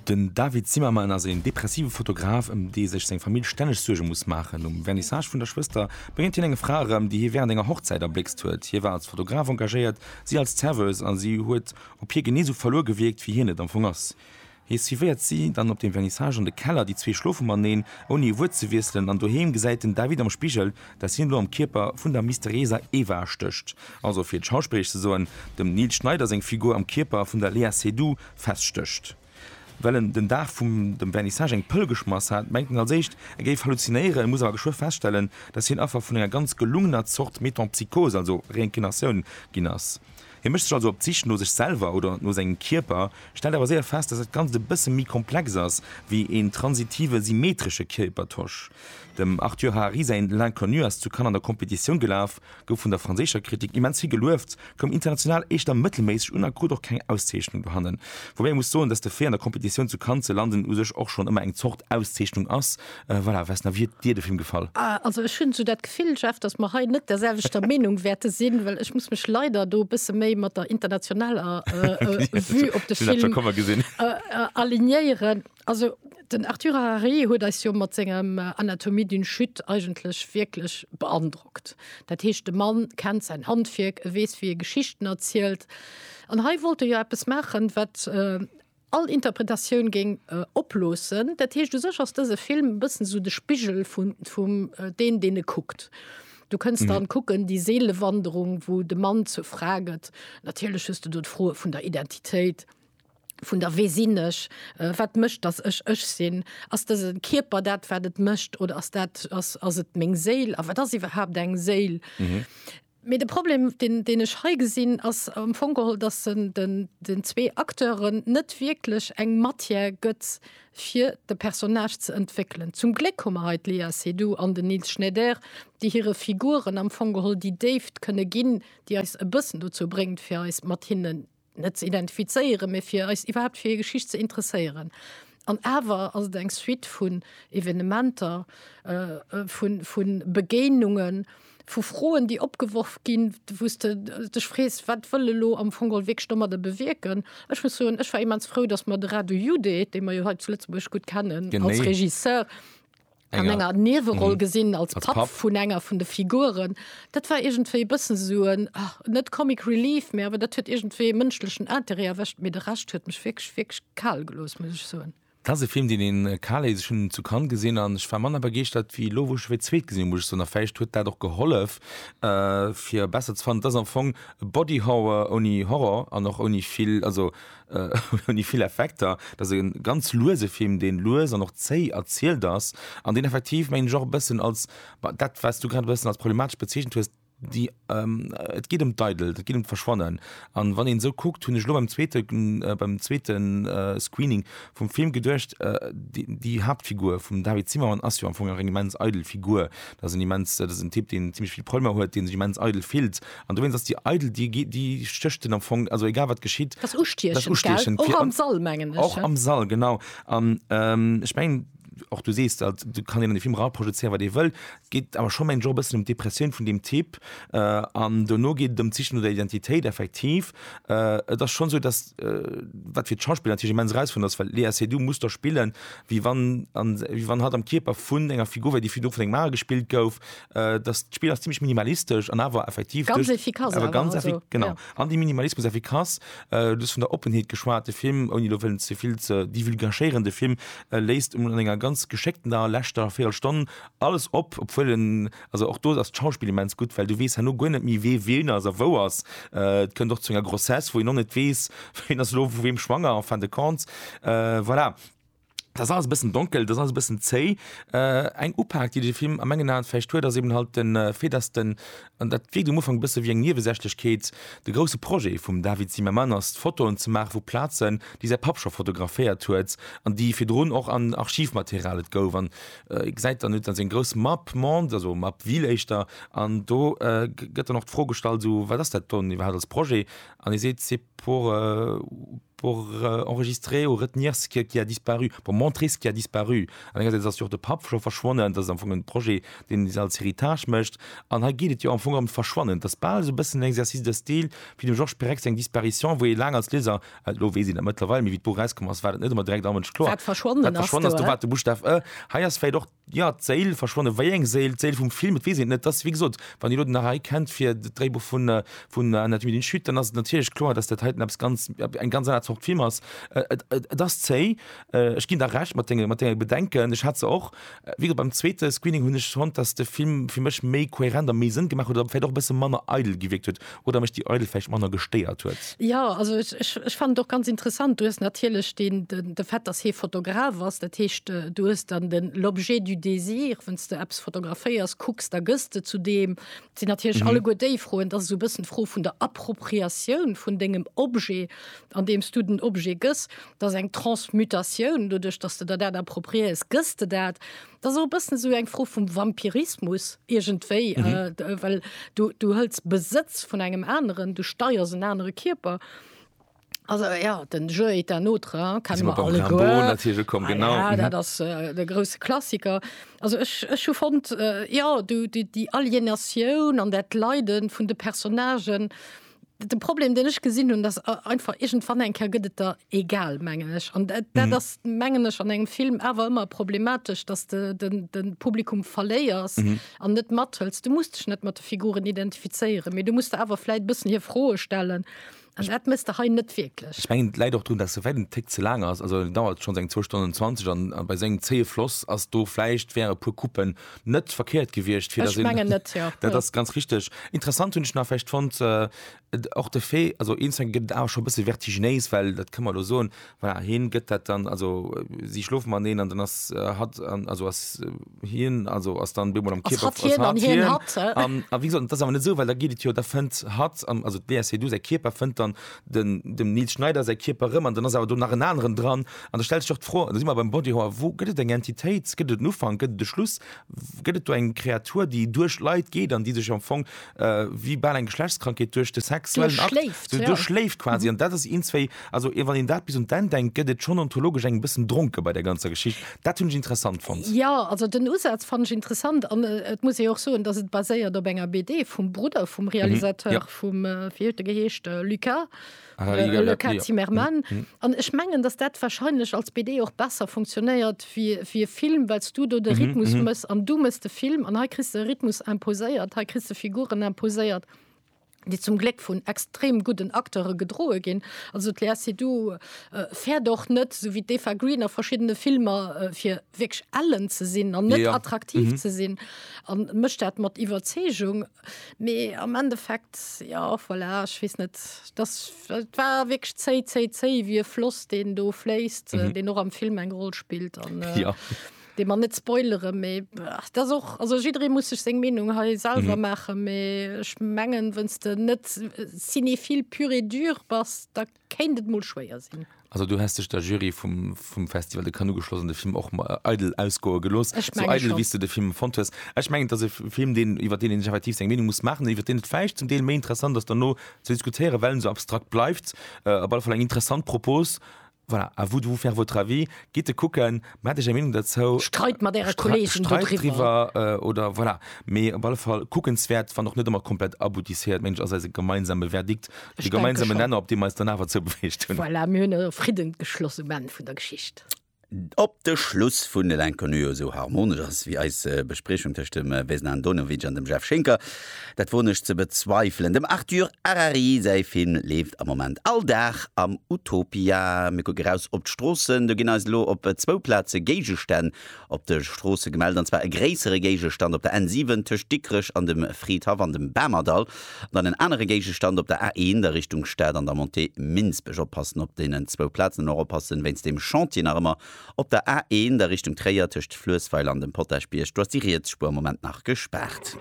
Den David Zimmerman ass een depressive Fotograf, ëm dee sech seng Famill stänneg Suerge muss maachen. Um Vernissage vun der Schwëster bréngt hien eng Fra erëm, déi hie wärend enger Hochzäit erbléckst huet. Hie war als Fotograf engagéiert, si als Serveuse a si huet op hie genee esou verluer gewierkt, wéi hien et am Fong ass. Hie suivéiert si dann op dem Vernissage an de Keller, déi zwee schlofe mateneen, ouni e Wuert ze wiesselen, an doheem gesäit den David am Spigel, dass hien elo am Kierper vun der mysterieser Eva stécht, also fir et schauspilleresch ze soen, dem Nils Schneider seng Figur am Kierper vun der Léa Seydoux feststécht. Well en den Dag vum dem Vernissage eng Pëll geschmass hat, mengt en als éischt, e géif halluzinéieren, muss awer geschwë feststellen, dass hien Affer vun enger ganz gelungener Zort Metempsychose, also Reinkinatioun, ginn ass. Hie mécht sech also op d'Sich no sech selwer oder no sengem Kierper, stellt awer séier fest, dass dat Ganzt e bësse méi komplex ass wéi een transitive symmetresche Kierpertausch. Dem Arthur Harari säin L'Inconnu ass zu Cannes an der Competitioun gelaf, gouf vun der franséischer Kritik immens vill gelueft, koum international éischter mëttelméisseg un a krut och keng Auszeechnung dohannen. Woubäi ee muss soen, dass de Fait an der Competitioun zu Cannes ze landen u sech och schonn ëmmer eng Zort Auszeechnung ass, Äh, voilà, was na wie dir de Film gefall? Ah, also ech hunn sou dat Gefill, Jeff, dass mer hei net der selwechter Meenung wäerte sinn, well ech muss mech leider do e bësse méi mat der internationaler äh, äh, Vue op de Film äh, äh, alignéieren. Also den Arthur Harari huet eis jo mat sengem äh, Anatomie d'une Chute eigentlech wierklech beandrockt. Dat heescht de Mann kennt sein Handwierk, e weess wie e Geschichten erzielt. An hei wollt e jo eppes machen, wat äh, all Interpretatioun géing oploossen. Dat heescht, u sech ass dëse Film e bëssen esou de Spigel vun, vum deen, deen e kuckt. Du kënns dann kucken, déi Seelewanderung, wou de Mann zur Fra gëtt. Natierlech hues de do d'Froe vun der Identitéit, vun der Wee sinn ech, wat mécht, datt ech ech sinn? Ass dëse Kierper dat, wat et mécht, oder ass dat, ass, ass et meng Séil? A wat ass iwwerhaapt eng Séil? Mee de Problem, deen, deen ech hei gesinn, ass am Fong geholl, dass en den, den zwee Acteuren net wierklech eng Matière gëtt, fir de Personnage ze entwéckelen. Zum Gléck hu mer hei d'Léa Seydoux an den Nils Schneider, déi hire Figuren am Fong geholl déi Déift kënne ginn, déi eis e bëssen dozou bréngt, fir eis mat hinnen net ze identifizéieren, mee fir eis iwwerhaapt fir hir Geschicht ze interesséieren. An awer ass et eng Suite vun Evenementer, vu Begéinungen, vu Froen, déi opgeworf ginn, wou s de dech frees, Wat wëll elo am Fong geholl wierklech domadder bewierken? Ech muss soen, ech war immens frou, datt mer de Radu Jude, dee mer jo hei zu Lëtzebuerg gutt kennen als Regisseur, an enger Nieweroll gesinn als Papp vun enger vun de Figuren. Dat war iergendwéi e bëssen esou en, net Comic Relief, mä awer dat huet iergendwéi e mënschlechen Interêt erwëscht. Mee de Rescht huet mech wierklech, wierklech kal gelooss, muss ech soen. Dat ass e Film, deen een kal léisst. Ech hunn en zu Cannes gesinn an ech war manner begeeschtert ewéi elo, wou ech e fir d'zweet gesinn hunn, muss ech soen. A vläicht huet dat och gehollef, fir e besser ze fannen. Et ass am Fong e Body Horror ouni Horror an och ouni vill, also ouni vill Effekter. Et ass e ganz luese Film, dee lues an och zéi erzielt ass an deen effektiv, mengen ech, och e bëssen als dat, wat s du grad e bëssen als problematesch bezeechent hues, déi, et geet ëm d'Eidelt, et geet ëm d'Verschwannen. A wann een esou kuckt, hunn ech elo beim zweete, beim zweete Screening vum Film geduecht, déi Haaptfigur vum David Zimmermann ass jo am Fong nach eng immens eidel Figur. Dat ass en immens, dat ass en Typ, deen zimmlech vill Problemer huet, dee sech immens eidel fillt An dowéinst ass déi eidel, déi gi-, déi stécht en am Fong, also egal wat geschitt, Dat ass dat ass ustiechend, gell? ustiechend Och fir am an, Sall, mengen ech, och ja. am Sall, genau. An ähm, ech mengen, och du sees dat, do kann een an de Film eraprojezéieren, wat ee wëll. Et geet awer scho, mengen ech, och e bëssen ëm d'Depressioun vun deem Typ. Äh, an dono geet et ëm d'Siche no der Identitéit, effektiv. Äh, et ass schonn esou, dass, äh, wat fir d'Schauspiller natierlech immens erausfuerdernd ass, well d'Léa Seydoux muss do spillen, wéi wann, an, wéi wann hatt am Kierper vun enger Figur wär, déi virdru vun engem anere gespillt gouf, Äh, das Spiel ist ziemlich minimalistisch an aber effektiv ganz durch, efficace, aber ganz also, effik genau ja. an die Minimalismus efficace äh, das von der Offenheit geschwarte Film und die zu viel zu die will gachierende Film äh, lässt um länger ganz geschickten da letzter vier Stunden alles ob obwohl den, also auch du das Schauspiel immens gut weil du west nur gar nicht wie weh wen also wo was äh, können doch zu einer Grossesse wo ich noch nicht weiß wenn das Lob wem schwanger fand kannst äh, voilà Dat ass alles e bëssen donkel, dat ass alles e bëssen zéi. Eng Upak, déi de Film a mengen Aen vläicht huet, ass eben halt de Fait, dass den, an dat wierkt um Ufank e bësse wéi eng Niewesächlechkeet, de grousse Projet vum David Zimmerman ass, Fotoen ze maache vu Plazen, déi säi Papp scho fotograféiert huet an déi virdrun och an Archivmaterial. Et gouf, an ee gesäit dann, huet dann seng grouss Map monde, also Map ville éischter, an do gëtt dann och d'Fro gestallt, esou, wat ass dat dann iwwerhaapt als Projet? An hie seet, c'est pour. Pour enregistrer ou retenir ce que qui a disparu, pour montrer ce qui a disparu. An engersäits ass jo och de Papp scho verschwonnen, dat ass am Fong en Projet, deen een als Héritage mécht. An hei geet et jo am Fong ëm d'Verschwannen. Et ass bal esou e bëssen en Exercice de style wéi dem Georges Perec seng Disparition, wou ee laang als Lieser, elo weess een dat mëttlerweil, mee wéi d'Buch erauskomm ass, war dat net ëmmer direkt all Mënsch kloer, Wat verschwonnen ass, do war. Wat verschwonnen ass, do war de Buschtaf e. Hei ass vläicht och. Jo, d'Séil verschwonnen. Wéi eng Séil? D'Séil vum Film? Et weess een et net. Et ass, wéi gesot, wann Dir elo den Arai kennt fir d'Dréibuch vun, vun Anatomie d'une chute, dann ass et natierlech kloer, datt dat heiten eppes ganz, eng ganz aner Zort Film ass. Et, et, et ass zéi. Ech ginn der Recht mat denge, mat denge Bedenken. Ech hat se och. Wéi gesot, beim zweete Screening hunn ech fonnt, datt de Film fir mech méi kohärent a méi Sënn gemaach huet oder vläicht och e bësse manner eidel gewierkt huet. Oder mech déi Eidel vläicht manner gestéiert huet. Jo, also ech fannen et och ganz interessant. Du hues natierlech de Fait, dass hie Fotograf ass. Dat heescht, du hues dann den l'objet du désir, wann s de eppes fotograféiers, kucks, da gëss de zu deem. Et sinn natierlech alleguer déi Froen. Et ass esou e bëssen d'Fro vun der Appropriatioun vun dengem Objet, andeem s du den Objet gëss. Et ass eng Transmutatioun. Doduerch, dass de der dat appropriéiers, gëss de dat. Dat ass och e bëssen esou eng Fro vum Vampirismus iergendwéi, well du, du hëls Besëtz vun engem aneren, du steiers en anere Kierper. Also ja, den Jeu est un autre, hein, Jetzt kennen sind wir wir beim Rimbaud alleguer. natürlich gekommen, Ah genau. ja, Mhm. dat ass äh, de grousse Klassiker. Also ech, ech hu fonnt, äh, ja, du, déi, déi Alienatioun an dat Leiden vun de Personnagen, De Problem den ech gesinn hunn, dass einfach egent wann eng Ker gëtt et der egal mengen ech an dat mm. ass mengen ech an engem Film awer ëmmer problematesch, dass de den, den Publikum verléiers an mm. net mathëls. Du musst dech net mat de Figuren identifizéieren, mé du musst de awer fläit bëssen hir Froe stellen. Also, dat misst der hein net wirklich ich mein, leid auch tun dass soweit den Tick zu lang ist also dauert schon seng 2 Stunden 20 an bei seng zee Floss as do fleicht wäre pur Kuppen net verkehrt gewiescht fir ech mengen net ja dat ass ganz richtig interessant hunn ech nach fecht fand äh, och de fee also instant gëtt awer schon bësse vertiginéis well dat këmmer lo soen war heen gëtt dat dann also äh, si schlofen man neen an dann ass äh, hat an also ass äh, hien also ass dann bemol am ass Kierper hat hien an hien hat an a wie gesagt das awer net so well da giet et jo da fënnt hat an also DSC du säi Kierper fënnt dann den dem Nils Schneider säi Kierper rëm an dann ass awer do nach en aneren dran an da stellt sech och d'Fro, da si mer beim Body Horror, wou gëtt et eng Entitéit, gëtt et en Ufank, gëtt et e Schluss, gëtt et do eng Kreatur, déi duerch Leit geet an déi sech am Fong wéi bal eng Geschlechtskrankheet duerch de sexuellen Akt duerchschléift, ja, duerchschléift quasi an dat ass een, zwéi, also wann een dat bis un d'Enn denkt, gëtt et schonn ontologesch eng bëssen dronke bei der ganzer Geschicht. Dat hunn ech interessant fonnt. Jo, also den Usaz fanne ech interessant an et muss ee jo och soen, dass et baséiert op enger BD vum Brudder vum Realisateur. vum wéi huet de geheescht äh, Lucas Ah, äh, Liga, Lucas Liga. Zimmermann Mhm, mhm. an ech mengen dass dat wahrscheinlech als BD och besser funktionéiert wie wie Film wells du do de Mhm, Rhythmus mhm. mëss an du mëss de Film an hei kriss de Rhythmus imposéiert hei kriss de Figuren imposéiert déi zum Gléck vun extrem gudden Akteure gedroe ginn also d'Léa Seydoux äh, fäert och net sou wéi d'Eva Green a verschiddene Filmer äh, fir wierklech ellen ze sinn an net Ja, ja. attraktiv Mhm. ze sinn an mécht dat mat Iwwerzeegung Mee am Endeffekt, jo, voilà, ech weess net, dass, et war wierklech zéi, zéi, zéi ewéi e Floss, deen do fléisst, mhm. deen och am Film eng Roll spillt. An, äh, ja. Dee man net spoilere méi dat och also jiddree muss sech seng Meenung hei selwer mhm. maache méi ech mengen wënns de net äh, cinéphil pur et dur bass da Kéint et mol schwéier sinn. Also du häss dech der Jury vum, vum Festival de Cannes ugeschloss an de Film och mal eidel ausgoe gelooss, Ech sou menge eidel, schonn. wéi s de de Film fonnt hues. Ech mengen, et ass e Film, deen, iwwer deen een sech effektiv seng Meenung muss maachen, iwwer deen et vläicht zum Deel méi interessant ass derno ze diskutéieren, well en esou abstrakt bleift. Op alle Fall eng interessant Propos. Voilà, à vous de vous faire votre avis. Gitt e kucken. Mä hat Dir eng Meenung derzou? Streit mat Äre Kolleegen do driwwer. Oder voilà, mee op alle Fall kuckenswäert, wann och net ëmmer komplett aboutisséiert, mengen ech ass eise gemeinsame Verdikt, de gemeinsame Nenner, op dee mer eis dann awer zoubewegt hunn. Voilà, mir hunn e Fridden geschloss um Enn vun der Geschicht. Ob de Schluss vun L'Inconnu esou harmonesch ass wéi eis Bespriechung tëscht dem Vesna Andonovic an dem Jeff Schinker, Dat woen ech ze bezweifelen. Dem Arthur Harari säi Film leeft am Moment all Dag am Utopia. Mir kucken eraus op d'Stroossen. Do ginn eis elo op zwou Plaze Géigestänn op de Stroosse gemellt. An zwar e gréissere Géigestand op der N7 tëscht Dikrech an dem Fridhaff an dem Bamerdall. An dann en anere Géigestand op der A1 a Richtung Stad an der Montée Minsbech. Oppassen op deenen zwou Plazen an och oppassen wéinst dem Chantier nach ëmmer op der A1 a Richtung Tréier tëscht Fluessweiler an dem Potaschbierg. Do ass déi riets Spuer am Moment nach gespaart.